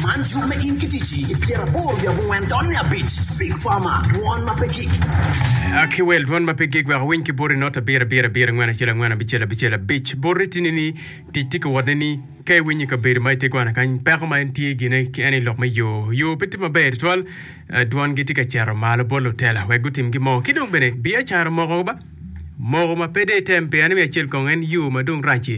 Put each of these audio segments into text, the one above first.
Man cuk me in ki ticci i pyeraboro wiye abongwen dot nge abic. Speak Farmer, dwon ma pe gik. A ki wel dwon ma pe gik wek awiny ki boti not abiro abiro abiro angwen acel angwen abicel abicel abic. Boti tye ni ni tic tye ka wot ne ni ka iwinyo i kabedo ma itye kwana kany peko ma en tye gine ki en i lok me yo yo pe tye maber tutwal eh, dwon gi tye ka cito malo bot lutela wek gutim gi mo ki dong bene biacara moko ba moko ma pe de item pia ni me acel kong en yo ma dong rac-ci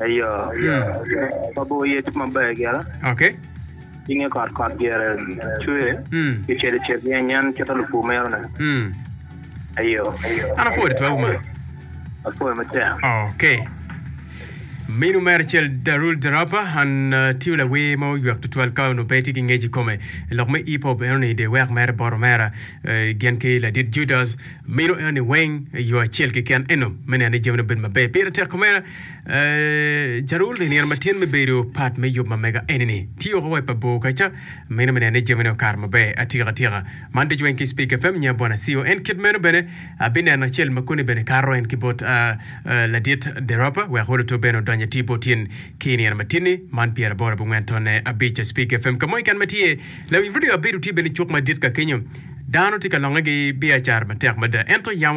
Ayo, pabor aye tye maber gire. Okay. Cinge kot kot gire cwer ki cel cel ryeny en cito lupur meno ne. Ayo. An apwoyo tutwa wu man. Apwoyo matek. Okay. Minu mere acel Darul Darapa an tiyo lawer ma oywak tutwal ka onongo pe tye ki ngec i kome lok me hip hop eno ni de wek mere bot omera gin ki ladit Judas minu eno ni weng yo acel keken eno me neno ni jami obedo maber pire tek omera Carol i nino ma tyen me bedo pat me yub ma mega eni ni, tye woko wa i pabor kaca, amino me neno ni jamine okato maber atika atika. Man ducu weng ki Speaker FM nya bwana Siyo. En kit meno bene abineno acel ma koni bene kato en ki bot ladit Deropa wek olo to bene odonyo atir bot in ki i nino ma tyen ni, man pyeraboro abongwen tonne abic Speaker FM. Ka mo keken ma tye, lawiny redio abedo tye bene cuk madit ka kenyo. Dano tye ka longe gi biacara matek mada. Ento yamo.